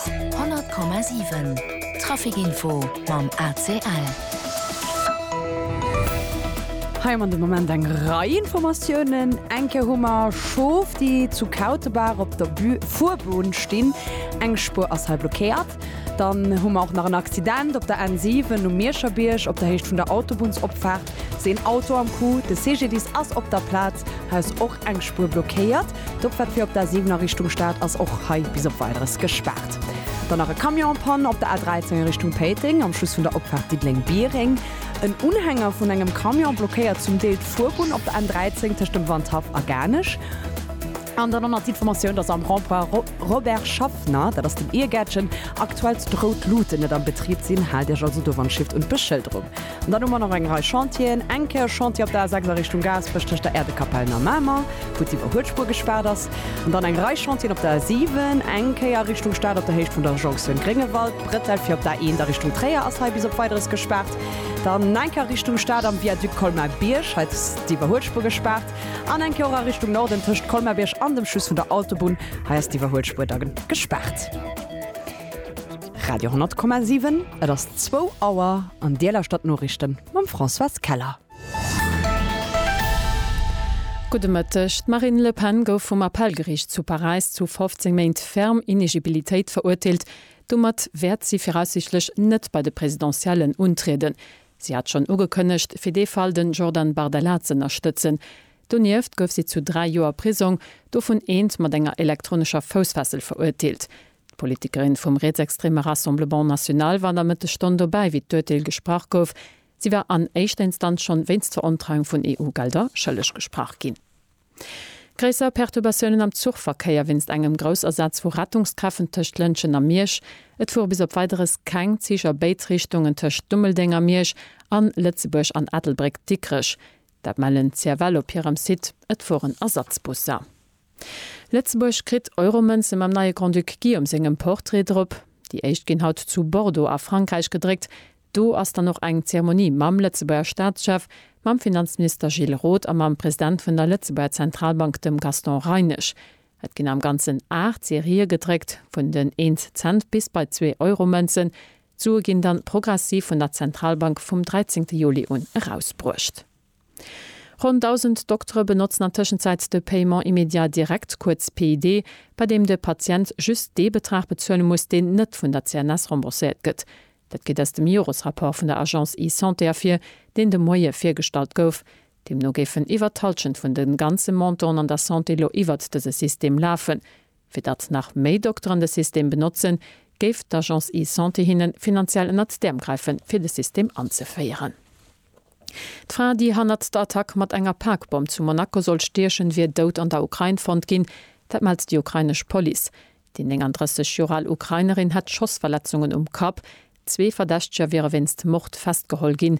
100,7 Trafic Info mam ACL. Hei am an de Moment eng Rei Informatiounen. Eng Kéier hu mer Schof, déi zu Kautebaach op der Fuerbunn stinn. Eng Spuer ass hei blockéiert. Dann hu mer och nach en Accident op der N7 um Mierscherbierg, op der Héicht vun der Autobunnsopfaart ass een Auto am Coup. De CGDIS ass op der Plaz, hei ass och eng Spuer blockéiert. D'Opfahrt fir op der 7 a Richtung Stad ass och hei bis op Weideres gespaart. Dann nach e Camion en Panne op der A13 a Richtung Péiteng am Schluss vun der Opfahrt Diddeleng-Biereng. En Unhänger vun engem Camion blockéiert zum Deel d'Fuerbunn op der N13 tëscht dem Wandhaff a Garnech. An dann och nach d'Informatioun, dass am Rond-point Robert Schaffner, dat ass den Irgäertchen, aktuell d'rout Luten net am Betrib sinn. Haalt Iech also do wann Shift un d'Beschëlderung. An dann hu mer nach eng Rei Chantieren, eng Kéier e Chantier op der A6 a Richtung Gaasperech tëscht der Äerdekapell no Mamer, wou d'Siwwer Huetspur gespaart ass. An dann eng Rei Chantieren op der A7, eng Kéier a Richtung Stad op der Héicht vun der Jonktioun Gréngewald, Brettel fir op d'A1 a Richtung Tréier ass hei bis op Weideres gespaart. Dann eng Kéier a Richtung Stad am Viaduc Colmar-Bierg, hei ass d'Siwwer Huetspur gespaart. An eng Kéier och a Richtung Norden tëscht Colmar-Bierg an dem Schluss vun der Autobunn, hei ass d'Iwwer Huetspur da gespaart. Radio 10,7 Et ass zwou Auer an Dir lauschtert d'Noriichten mam Françoise Keller. Gudde Mëtteg. D'Marine Le Pen gouf vum Appellgeriicht zu Paräis zu 15 Méint ferm Inegibilitéit verurteelt. Domat wäert si viraussiichtlech net bei de Presidentiellen untrieden. Si hat schonn ugekënnegt, fir dee Fall den Jordan Bardella z'ënnerstëtzen. Donieft gouf si zu dräi Joer Prisong, dovun eent mat enger elektronescher Foussfessel, verurteelt. D'Politikerin vum rietsextreme Rassemblement National war an der Mëttesstonn dobäi, wéi d'Urteel gesprach gouf. Si war an éischter Instanz schonn wéinst Verontreiung vun EU-Gelder schëlleg gesprach ginn. Gréisser Perturbatiounen am Zuchverkéier wéinst engem Groussasaz vu Rettungskräften tëscht Lëntgen a Miersch. Et fuere bis op Weideres keng Zich a béid Richtungen tëscht Dummeldeng a Miersch a Lëtzebuerg an Ettelbréck-Dikrech. Dat mellen d'CFL op hirem Site. Et fueren Ersatzbusser. Lëtzebuerg kritt Euromënze mam neie Grand-Duc Guillaume sengem Portrait drop. Déi éischt ginn haut zu Bordeaux a Frankräich gedréckt. Do ass dann och eng Zeremonie mam Lëtzebuerger Staatschef, mam Finanzminister Gilles Roth a mam President vun der Lëtzebuerger Zentralbank, dem Gaston Reinesch. Et ginn am Ganzen aacht Serië gedréckt, vun den Eent-Cent bis bei zwee Euromënzen. D'Sue ginn dann progressiv vun der Zentralbank vum 13 Juli un erausbruecht. Ronn 1.000 Doktere benotzen an Tëschenzäit de Paiement immédiat direct, kuerz PID, bei deem de Patient just dee Betrag bezuele muss, deen net vun der CNS rembourséiert gëtt. Dat geet aus dem Joresrapport vun der Agence eSanté ervir, deen de Moie virgestallt gouf. Deemno géifen iwwert d'Hallschent vun de ganze Montanten an der Santé elo iwwert dëse System lafen. Fir datt nach méi Dokteren de System benotzen, géif d'Agence eSanté hinne finanziell ënnert d'Äerm gräife fir de System anzeféieren. D'Fra, déi hannert der Attack mat enger Pakbomm zu Monaco sollt stiechen, wier dout an der Ukrain fonnt ginn. Dat mellt déi ukrainesch Police. Déi 39 Joer al Ukrainerin hätt Schossverletzungen um Kapp. Zwee Verdächteger wiere wéinst Mord festgeholl ginn.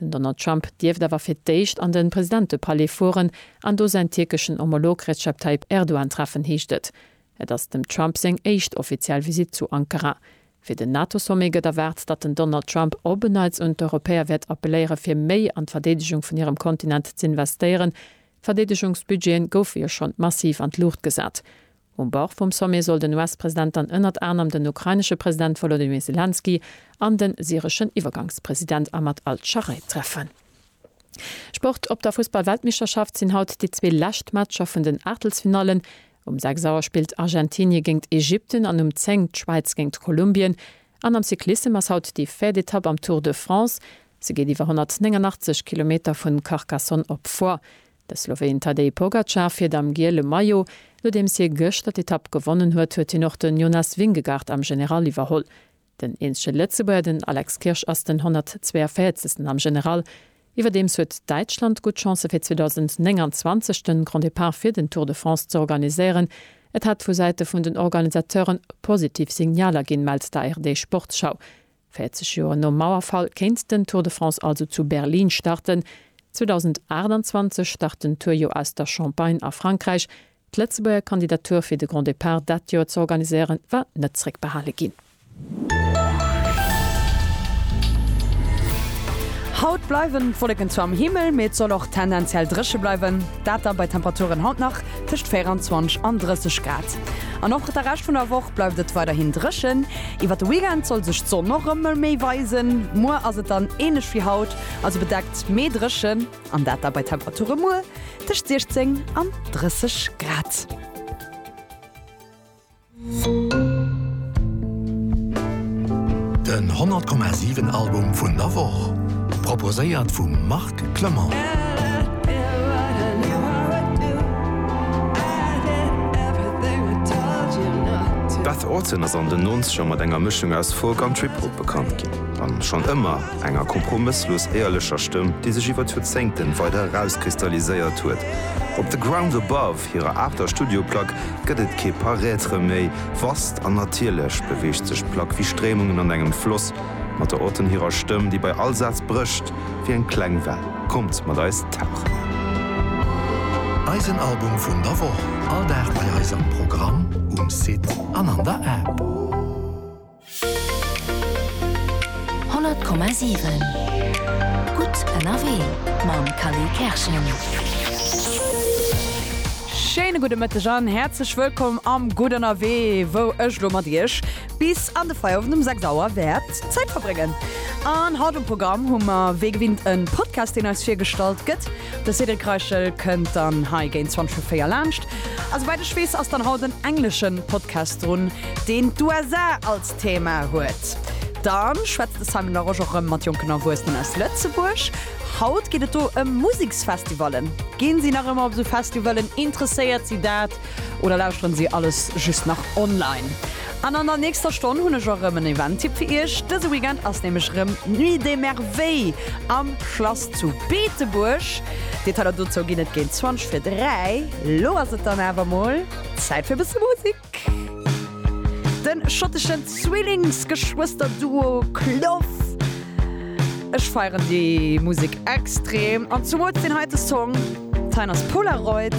Den Donald Trump dierft awer fir d'éischt an de Presidentepalais fueren an do säin tierkeschen Homolog Recep Tayyip Erdogan treffen, heescht et. Et ass dem Trump seng éischt offiziell Visitt zu Ankara. Fir den NATO-Sommet gëtt erwaart, datt den Donald Trump op en Neits un d'Europäer wäert appelléiere fir méi an d'Verdeedegung vun hirem Kontinent z'investéieren. D'Verdeedegungsbudgete goufe jo schonn massiv an d'Luucht gesat. Um Bord vum Sommet soll den US-President dann ënnert anerem den ukrainesche President Wolodymyr Selenskyj an de syreschen Iwwergangspresident Ahmad al-Sharai treffen. Sport Op der Fussball-Weltmeeschterschaft sinn haut déi zwee lescht Matcher vun den Aachtelsfinallen. Um 6 Auer spillt Argentinie géingt Ägypten an um 10 d'Schwäiz géingt Kolumbien. An am Cyclissem ass haut déi véiert Etapp am Tour de France. Se geet iwwer 189 Kilometer vun Carcassonne op Foix. De Sloween Tadej Pogacar fiert am giele Maillot. Nodeems hie gëschter d'Etapp gewonnen huet, huet hien och den Jonas Vingegaard am General iwwerholl. Den eenzege Lëtzebuerger, den Alex Kirsch, ass den 142. am General. Iwwerdeems huet Däitschland gutt Chancë fir 2029 de Grand Depart fir den Tour de France ze organiséieren. Et hätt vu Säite vun den Organisateuren positiv Signaler ginn, mellt d'ARD Sportschau. 40 Joer nom Mauerfall kéint den Tour de France also zu Berlin starten. 2028 start den Tour jo aus der Champagne a Frankräich. D'Lëtzebuerger Kandidatur fir de Grand Depart dat Joer z'organiséieren, war net zréckbehale ginn. Haut bleiwen d'Wolleken zwar am Himmel, mee et soll och tendenziell dréche bleiwen. Dat da bei Temperaturen haut nach tëscht 24 an 30 Grad. An och de Rescht vun der Woch bleift et weiderhin dréchen. Iwwer de Weekend soll sech d'Sonn och ëmmer méi weisen. Muer ass et dann ähnlech wéi haut, also bedeckt, mee dréchen, an dat da bei Temperature muer tëscht 16 an 30 Grad. Den 100,7 Album vun der Woch proposéiert vum Marc Lynch. Clement. Beth Orton ass an den Nonzeger mat enger Mëschung aus Folk an Trip-Hop bekannt ginn, a schonn ëmmer enger kompromësslos éierlecher Stëmm, déi sech iwwer d'Joerzéngten weider erauskristalliséiert huet. Op The Ground Above, hirer aachter Studioplack, gëtt et kee Paraître méi. Vast an natierlech beweegt sech d'Plack wéi Stréimungen an engem Floss, mat der Orton hirer Stëmm, déi bei all Saz brécht. wéi eng kleng Well. Kommt mat eis tauchen! Eisen Album vun der Woch, all Dag bei eis am Programm, um Site an an der App. 100,7 Gutt ënnerwee mam Cally Kerschen. Schéine gudde Mëtteg an häerzlech wëllkomm am Gutt ënnerwee, wou ech elo mat iech bis an de Feierowend um 6 Auer wäert Zäit verbréngen. An haut um Programm hu mer wéi gewinnt e Podcast, deen eis virgestallt gëtt. De Cédric Reichel kënnt dann hei géint 20 vu 4 laanscht. A souwäit ech weess, ass dann haut en englesche Podcast drun, deen d'USA als Thema huet. Dann schwätzt de Simon Larosche och erëm mat jonken Erwuessenen aus Lëtzebuerg. Haut geet et do ëm Museksfestivallen. Ginn si nach ëmmer op esou Festivalen? Interesséiert si dat? Oder lauschteren si alles just nach online? An an der nächster Stonn hunn ech och rëm en Event-Tipp fir iech. Dëse Weekend ass nämlech rëm d'Nuit des Merveilles am Schlass zu Beetebuerg. Detailer dozou ginn et géint 20 fir 3. Lo ass et dann awer mol Zäit fir e bësse Musek. De schotteschen Zwillings-Geschwëster-Duo Clough, ech feieren déi Musek extrem an zumools deen heite Song Tyner's Polaroid.